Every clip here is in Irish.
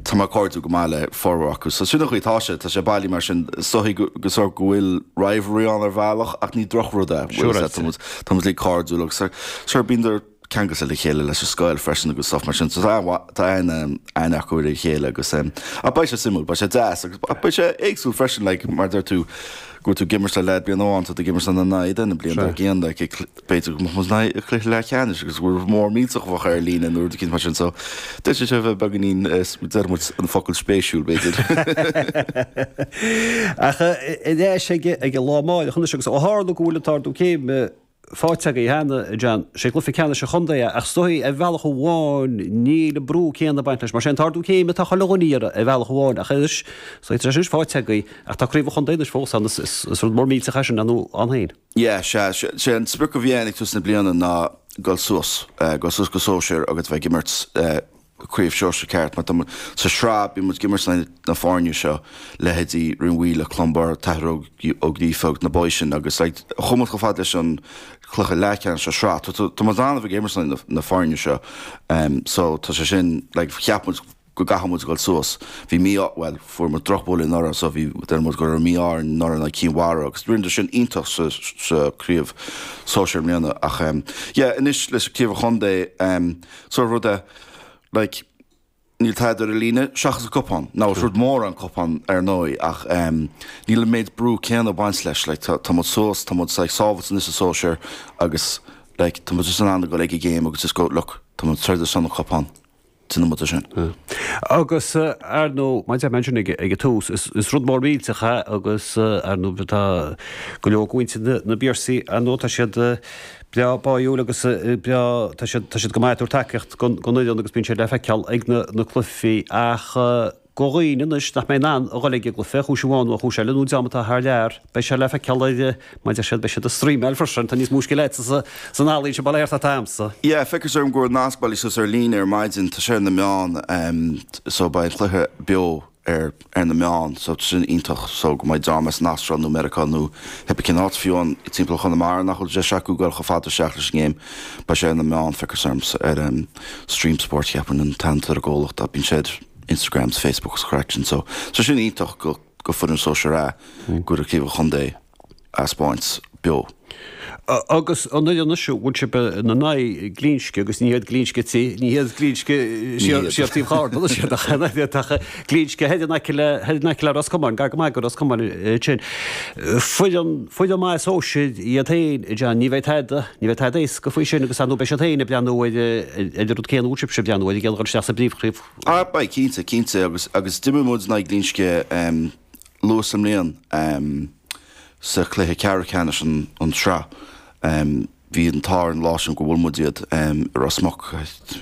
Tá mé cairdiúil go maith le formhór acu, so sin an chaoi atá sé. Tá sé bailithe mar sin. Is dóichí go bhfuil rivalry ann ar bhealach ach ní drochrud é. Tá muid uilig cairdiúil agus sure bhíodar ceangailte le chéile leis an scoil freisin agus stuff mar sin, so tá aithne acu ar a chéile agus ach beidh sé suimiúil, beidh sé deas agus ach beidh sé éagsúil freisin, like mar a deir tú, go bhfuil tú ag imirt le leaid bliain amháin, tá tú ag imirt ina n-aghaidh an bhliain dár gcionn, like B'fhéidir go mbeadh muid in aghaidh cluiche leathcheannais agus rud mór millteach bheadh ar líne nó rud eicínt mar sin so deir sé seo a bheith beagainín deir muid an focal spéisiúil b'fhéidir. Ach i leith an lá amárach anois agus ó tharla go bhfuil an t-ardú céime fáighte againn cheana John, sé cluiche ceannais an chontae é ach is dóichí ar bhealach amháin níl an brú céanna ag baint leis mar sé an t-ardú céime atá chomh leogainní ar bhealach amháin ach anois tá sé anois fáighte againn ach tá craobh an chontae anois fós ann is rud mór millteach é sin ann féin. Yeah, sea, sé an sprioc a bhí againn ag tús na bliana ná dul suas, dul suas go sóisear agus bheith ag imirt Craobh Sóisear ceart mar tá muid, sa sraith, bíonn muid ag imirt le na foirne seo, leithéidí Rinn Mhaoile, Clonbur, An tAthair Ó Gríofa agus na boys sin agus like chuaigh muid chomh fada leis an cluiche leathcheannais sa sraith. Tá muid in ann a bheith ag imirt le na foirne seo so tá sé sin like cheap muid go gcaithfidh muid a dhul suas. Bhí mí-ádh, bhuel, fuair muid drochbhuille anuraidh so bhí, deir muid go raibh mí-ádh orainn anuraidh in aghaidh Cinn Mhara agus rinneadar sin iontach sa, sa Chraobh Sóisear i mbliana ach em yeah anois leis an Craobh an Chontae em sort of rud a like níl tada ar an líne seachas an cupán, now is rud mór an cupán ar ndóigh ach em níl an méid brú céanna ag baint leis like tá, tá muid suas, tá muid like sábhailte anois sa Sóisear agus like tá muid just in ann a dhul ag an ngéim agus just go look tá muid ag troid ar son an chupán. Sin an muda sin. Agus, ar ndóigh, mar a deir mé ansin ag an tús, is rud mór millteach é agus, ar ndóigh, tá go leor de mhuintir na bPiarsaigh, ar ndóigh, tá siad breá báúil agus breá, tá siad go maith ag tabhairt tacaíocht don fhoireann agus bíonn siad le feiceáil ag na cluichí ach, Do dhaoine anois nach mbeidh in ann a dhul ag an gcluiche, chúis amháin nó chúis eile, nó dream atá thar lear, beidh sé le feiceáil ar, mar deir siad, beidh siad ag streamáil freisin, tá níos mó scil acu san ealaín sin, b'fhéidir ná atá agamsa. Yeah, feictear dom go raibh nasc bailithe suas ar líne ar maidin, tá sé ar na meáin, so beidh an cluiche beo ar ar na meáin, so sin iontach, so go mbeidh dream as an Astráil nó Meiriceá nó cibé cén áit, fiú amháin timpeall Chonamara nach bhfuil deis acu dul chomh fada isteach leis an ngéim, beidh sé ar na meáin, feictear dom, ar Stream Sport cheapfainn an t-ainm atá ar an gcomhlacht ach bíonn sé ar Instagram 's Facebook 's an chraic sin so so sin iontach go go foireann sóisear ah go raibh Craobh an Chontae á thaispeáint beo. Agus an fhoireann anois a bhfuil sibh ina n-aghaidh, Glinsce agus ní hiad Glinsce tí, ní hiad Glinsce thiar taobh Charna sé nach nach iad ach Glinsce thoir in aice le thoir in aice le Ros Comáin, gar go maith go Ros Comáin sin. Foireann foireann maith is óg siad iad féin John, ní bheidh tada. Ní bheidh tada éasca faoi sin agus, ar ndóigh, beidh siad féin ag breathnú ar an rud céanna, úr sibhse ag breathnú air, ag iarraidh a chur isteach sa bpríomhshraith. Ah, beidh, cinnte, cinnte. Agus, agus d'imir muid in aghaidh Ghlinsce em luath sa mbliain em sa chluiche ceathrú ceannais an an tsraith em bhí an t-ádh orainn an lá sin gur bhuail muid iad em i Ros Muc,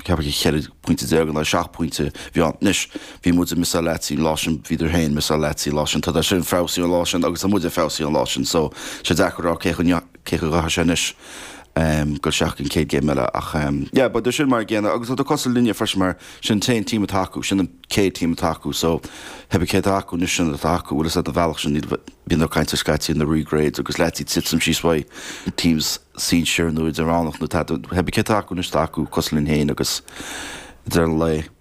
ceapaim ceithre phointe déag in aghaidh seacht pointe a bhí ann. Anois, bhí muide missáil leaids an lá sin, bhíodar féin missáil leaids an lá sin, tá siadsan feabhsaithe ón lá sin agus tá muide feabhsaithe ón lá sin so sé deacair a rá cé chomh cé go gcaithfidh sé anois dul isteach ag an chéad gcéim eile ach yeah but tá siadsan mar a chéile agus tádar cosúil linne freisin mar sin an t-aon team atá acu, sin an chéad team atá acu so ach pé bith cé atá acu anois sin atá acu bhfuil fhios a'd an bhealach sin níl, bíonn daoine ag caint scaití ar na re-grades agus leaids ag titim síos uaidh teams sinsir nó idirmheánach nó tada, ach pé bith cé atá acu anois atá acu cosúil linn féin agus i ndeireadh an lae.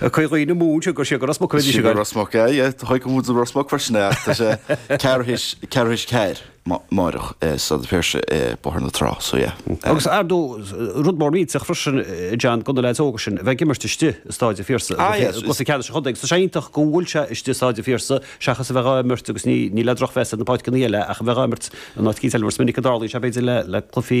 Caoi ghaoth na Mún, siúd gur siúd go Ros Muc a bhí Siúd go Ros Muc, aye, aye, Achadh Camhaois is Ros Muc freisin, aye, ach tá sé ceathrú tar éis, ceathrú tar éis a ceathair amárach, i Staid an Phiarsaigh i mBóthar na Trá, so yeah, aye. Agus ardú, rud mór millteach freisin, John, do na leaids óga sin a bheith ag imirt istigh i Staid an Phiarsaigh, Ah, yes, is. cluiche ceannais an chontae, so is iontach go bhfuil sé istigh i Staid an Phiarsaigh seachas a bheith á imirt, agus ní, ní le drochmheas ar na páirceanna eile, ach a bheith á imirt in áit eicínt eile, mar is minic a tharlaíonn sé, b'fhéidir, le, le cluichí.